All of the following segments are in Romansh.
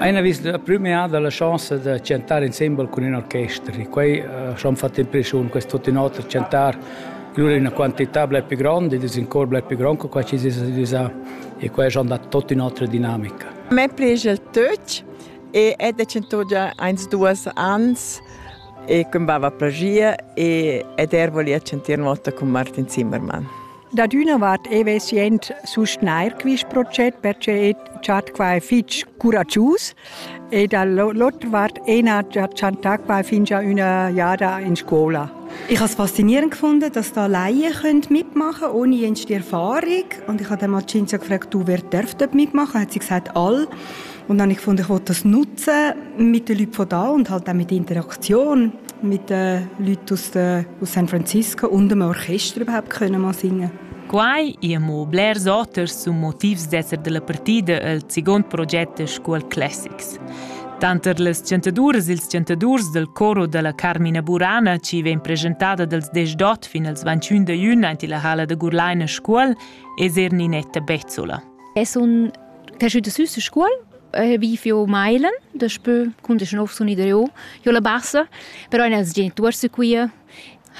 Ein ha vis la prümeada la chonsa da chantar insembel cun in orchester e quei ha schon fatg impresiun quest tut in oter chantar lura ina quantità blei pli gronda, in cor blei pli grond che quei chi s'es realisà e quei ha schon dat tot in'otra dinamica. Me plescha il töch e è da chantò già eins duas ans e cum bava plagia e ed er volia chantir notta cun Martin Zimmermann. Dad üna vart e vesi ent sustgnair quist proget perche e chat qua fich curagius e dall'otra vart ena ha chantà qua fingia üna jada in scola. Ich habe es faszinierend gefunden, dass da Laien mitmachen können, ohne jenste Erfahrung. Und ich habe mal Cinzia gefragt, du, wer darf dort mitmachen? Hat sie gesagt, alle. Und dann habe ich gefunden, ich wollte das nutzen mit den Leuten von da und halt auch mit der Interaktion mit den Leuten aus, de, aus San Francisco und dem Orchester überhaupt können mal singen. Quai amo blers oters sun motivs d'esser della partida el segund proget School Classics. Tanter las chantaduras ils chantadurs del coro della Carmina Burana ci vegn presentada dals 18 fin als 21 da jun ante la hala da Gurlaina Scuol es er Ninetta Bezzola. Es un T'è schüt süs a scuol, vi fio mailen, daspö cun desch nov sun i dareu jo la bassa, però eir nels genituors da Cuira,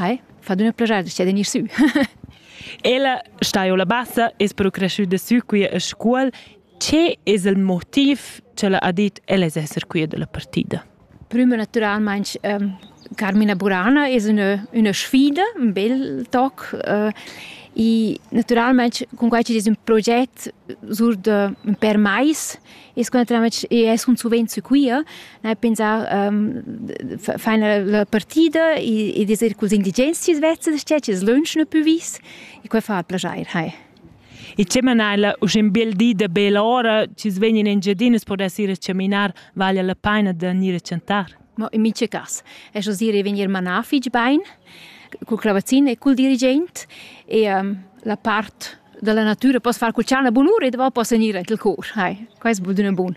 hai, fa adüna plaschar da gnir sü. Ella sta jo la bassa, es però creschüda sü Cuira a scuol. Che es il motiv cha l'ha dit ella es esser Cuira da la partida? prüma natüralmaing Carmina Burana es ün'ö üna sfida, ün bel toc e natüralmaing cun quai chi'd es ün proget sur da ün pêr mais es quai natüralmaing i es cun suvenzo quia, n'hai pensà faina la partida ed es eir culs indigens chi's vezza da sted chi's lönschna pü vis e quai fa plaschair, hai. E che mana ella usch in bel di da bella ora, chi's vegnan Engiadinas per ir a chaminar, vaglia la paina da gnir a chantar. Ma in miche cas, es oz ir e vegnir manà fich bain, cul clavazin e cul dirigent e um, la part della natura poss far cul tschana bunura e dopo poss gnir aint il cor. Hai, quai es bod üna bun.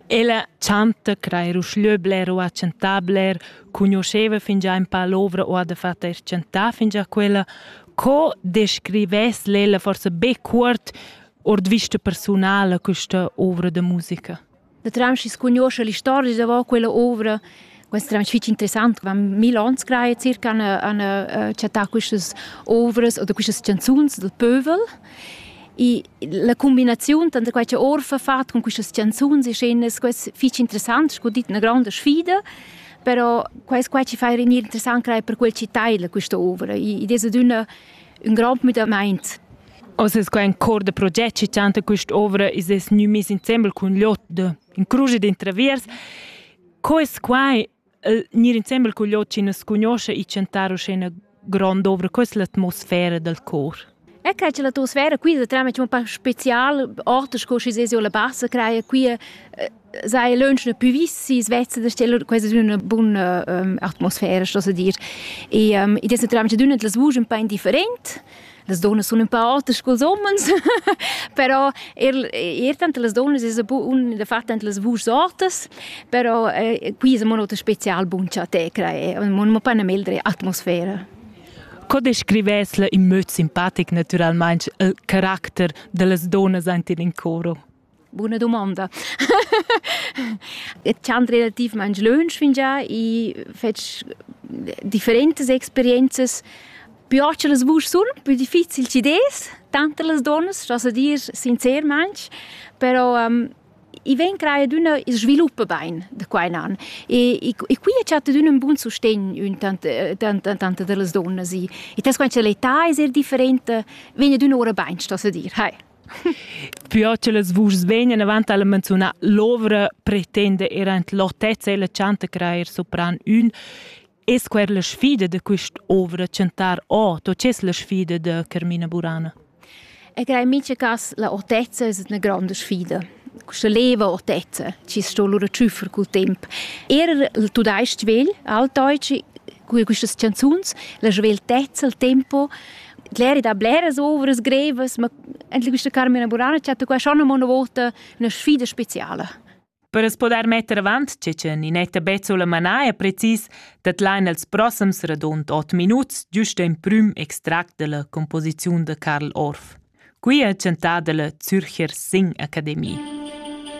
Ella chanta, crai ruschlö bler o ha chantà bler, cugnuoscheva fingià ün pa l'ovra o ha dafatta eir chantà fingià quella. Co descrivess l'ella forsa be cuort ord vista persunala questa ovra da musica? Da Tramschi scugnoscha l'istoria davant quella ovra Questo era fitg interessant, wenn mille ans creie circa an an chattà quistas ovras oder quistas canzuns dal pövel. E la combinazione tra quai che Orfa fatto con queste canzoni e scene è fitg interessante, è una grande sfida. però quais qua ci fai renir interessant crai per quel ci taila questa ovra ed è d'una un grand müdament Os es quai cor da proget che chanta questa ovra is es gnü mis insembel cun Lot in cruge d'intraviers Co es quai eh, gnir insembel cul jod chi nu's cugnuoscha e chantar uschè üna grond'ovra? Co es l'atmosfera dal cor? E che c'è l'atmosfera qui da trama c'è un po' special, orte sco si sesio la bassa craia qui sei lunch ne puvissi svezza da stelle quasi una buona um, atmosfera sto se dir e um, id es naturalmente d'una delle vugi un po' indifferent Las donnas sun ün pa auters culs homens, però eir eir tanter las donnas es un fat tanter las vuschs ortas, però qui es amo ün oter special bun cha te crai, mo nu pa 'na meglra atmosfera. Co descrivess in möd simpatic natüralmaing il caracter da las donnas aint in coro? Buna dumonda. E dschan relativmaing lönch fingià, i fetsch differentas experienzas. Più ocha las vusch sun, più difficil chi des, tant las duonnas, scha so dir sincermaing, però i vegn creà adüna il svilup bain da qua in an. E e qui a chatta adüna ün bun sustegn intant da las dunnas. I tas quant cha l'età es er differenta, vegn adüna oura bain, sto so dir, hai. Pür che las vuschs vegnan avant alla menziunà l'ovra pretenda er ant l'otezza e la chanta crair sopran ün Es quer la sfida da quist'ovra chantar o to c'es la sfida da Carmina Burana? E crei mica cas la otezza es üna gronda sfida. Questa leva otezza ci sto lura ciuffar col temp. Er il tudais-ch vegl, altdeutschi, Cur quistas chanzuns la sveltezza, il tempo, l'eri da bleras ovras grevas, ma anche questa Carmina Burana ci ha detto qua schon una volta una sfida speciale. Per as poder metter avant che che Ninetta Bezzola manà è precis dat lain els prossams radund 8 minuts giust in prüm extract della composiziun de Karl Orff. Qui è chantada la Zürcher Sing Akademie.